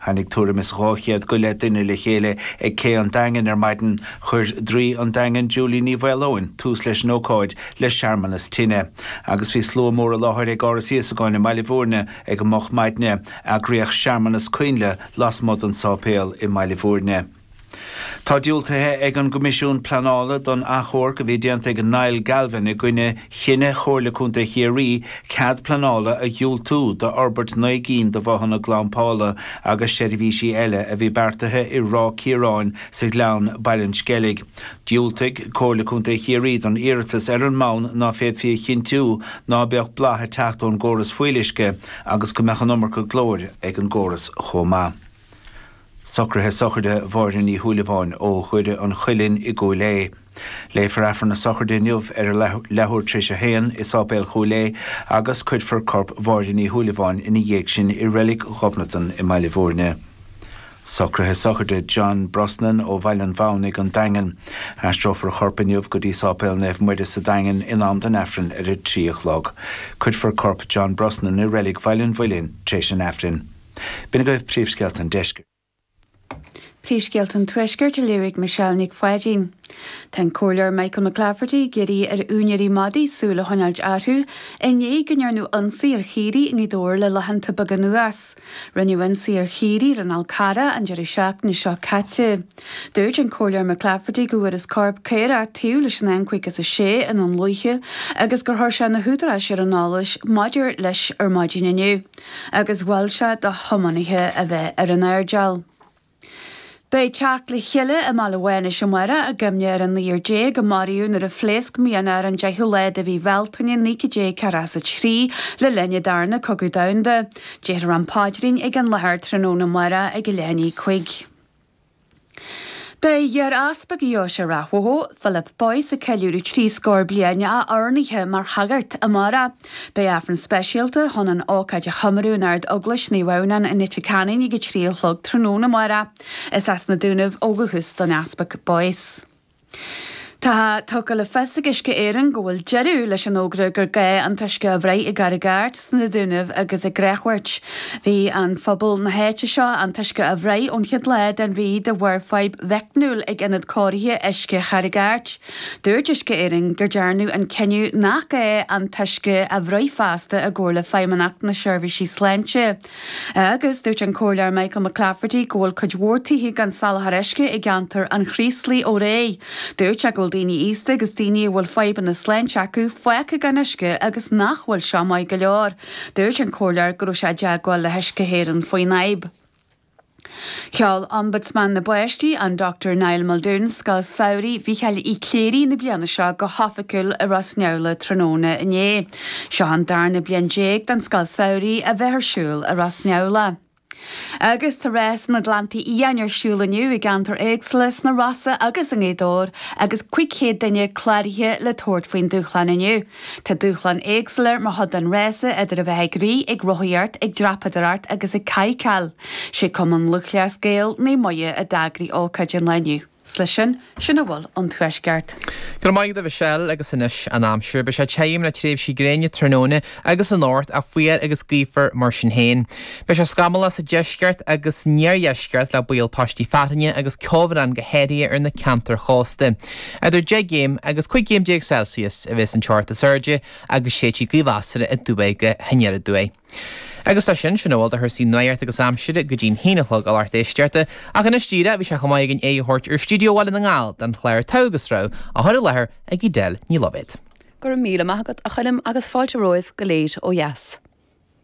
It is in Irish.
Tháinig tuairim is dhá chéad go leith duine le chéile ag Cé an Daingin ar maidin. Chuir draoi an Daingin, Julie Ní Mhaoileoin, tús leis an ócáid le searmanas tine. Agus bhí slua mór i láthair ag Áras Íosagáin i mBaile Mhúirne ag an moch maidne, eagraíodh searmanas coinnle lasmuigh den sáipéal i mBaile Mhúirne. Tá diúltaithe ag an gCoimisiún Pleanála don achomharc a bhí déanta ag Niall Galvin i gcoinne chinneadh Chomhairle Contae Chiarraí cead pleanála a dhiúltú d'fhorbairt naoi gcinn de bhothanna glampála agus seirbhísí eile a bhí beartaithe i Ráth Ciaráin, sa Ghleann, Baile an Sceilg. Dhiúltaigh Comhairle Contae Chiarraí don iarratas ar an mbonn ná féadfaí a chinntiú ná beadh boladh ag teacht ón gcóras fuíolluisce agus go mbeadh an iomarca glóir ag an gcóras chomh maith. Socruithe Sochraide Mháire Ní Shúilleabháin ó Dhoire an Chuilinn i gCúil Aodha. Léifear Aifreann na Sochraide inniu ar a leathuair tréis a haon i Sáipéal Chúil Aodha agus cuirfear corp Mháire Ní Shúilleabháin ina dhiaidh sin i Reilig Ghobnatan i mBaile Bhúirne. Socruithe Sochraide John Brosnan ó Bhaile an Mhaonaigh, An Daingean. Aistreofar a chorp inniu go dtí Sáipéal Naomh Muire sa Daingean in am don Aifreann ar a trí a chlog. Cuirfear corp John Brosnan i Reilig Bhaile an Mhuilinn tréis an Aifrinn. B'in agaibh príomhscéalta an Deiscirt. Príomhscéalta an Tuaiscirt a léirigh Michelle Nic Pháidín. Tá an Comhairleoir Michael McClafferty ag iarraidh ar úinéirí madaí súil a choinneáilt orthu i ndiaidh go ndearnadh ionsaí ar chaoirigh i nGaoth Dobhair le laethanta beaga anuas. Rinneadh ionsaí ar chaoirigh i Rinn Cara an deireadh seachtaine seo caite. Dúirt an Comhairleoir McClafferty go bhfuarthas corp caora taobh leis an N56 i nDún Lúiche agus gur chuir sé na húdaráis ar an eolas maidir leis ar maidin inniu. agus mhol sé do thiománaithe a bheith ar a n-airdeall. Beidh teacht le chéile i mBaile Mhánais amáireach i gcuimhne ar an naonúr déag a maraíodh nuair a phléasc mianach ar an deichiú lá de mhí Bhealtaine naoi gcéad déag ceathracha is a trí le linn an darna cogadh domhanda. Déarfar an Paidrín ag an láthair tráthnóna amáireach ag a leath i ndiaidh a cúig. Beidh iar-Easpag Dheoise Ráth Bhoth, Philip Boyce, ag ceiliúradh trí scór bliain a oirnithe mar shagart amárach. Beidh Aifreann speisialta chun an ócáid a chomóradh in Ardeaglais Naomh Adhamhnán i Leitir Ceanainn ag a trí a chlog tráthnóna amárach. Is as na Dúnaibh ó dhúchas don Easpag Boyce. Tá tugtha le fios ag Uisce Éireann go bhfuil deireadh leis an fhógra gur gá an t-uisce a bhruith i gCarraig Airt, sna Dúnaibh agus i gCreamhghort. Bhí ar phobal na háite seo an t-uisce a bhruith ón chéad lá den mhí de bharr fadhb mheicniúil ag Ionad Cóirithe Uisce Charraig Airt. Dúirt Uisce Éireann gur dearnadh an cinneadh nach gá an t-uisce a bhruith feasta i gcomhar le Feidhmeannacht na Seirbhísí Sláinte. Agus dúirt an Comhairleoir Michael McClafferty go bhfuil cuid mhór tithe gan soláthar uisce i gceantar an Chraoslaigh ó aréir. Dúirt sé go bhfuil daoine aosta agus daoine a bhfuil fadhbanna sláinte acu fágtha gan uisce agus nach bhfuil seo maith go leor. Dúirt an Comhairleoir go raibh sé i dteagmháil le hUisce Éireann faoin fhadhb. Sheol Ombudsman na bPáistí, an Dr Niall Muldoon, Scoil Samhraidh Mhicheáil Uí Chléirigh na bliana seo go hoifigiúil i Ros Neamhlach tráthnóna inné. Seo an darna bliain déag don Scoil Samhraidh a bheith ar siúl i Ros Neamhlach. Agus tá Rás na nGleanntaí Fiáine ar siúl inniu i gceantair éagsúla sna Rosa agus i nGaoth Dobhair agus 500 duine cláraithe le tabhairt faoin dúshlán inniu. Tá dúshláin éagsúla mar chuid den rása idir a bheith ag rith, ag rothaíocht, ag dreapadóireacht agus ag cadhcáil. Sé Cumann Lúthchleas Gael, Naomh Muire a d'eagraigh ócáid an lae inniu. 'S leis sin, sin a bhfuil ón Tuaisceart. Go raibh maith agat a Mhichelle agus anois an aimsir. Beidh sé tirim le tréimhsí gréine tráthnóna agus anocht ach fuar agus gaofar mar sin féin. Beidh sé scamallach sa deisceart agus an iardheisceart le baol paistí fearthainne agus ceobhrán go háirithe ar na ceantair chósta. Idir deich gcéim agus cúig chéim déag Celsius a bheas an teocht is airde agus séidfidh gaoth mheasartha aduaidh go haniar aduaidh. Agus leis sin, sin a bhfuil de chúrsaí nuachta agus aimsire go dtí an haon a chlog a lucht éisteachta, ach anois díreach bhí sé chomh maith againn aghaidh a thabhairt ar stiúideo Bhaile na nGall don chlár Togha agus Rogha á chur i láthair ag Edel Ní Loibhéad. Go raibh míle maith agat, a Choilm, agus fáilte romhaibh go léir ó dheas.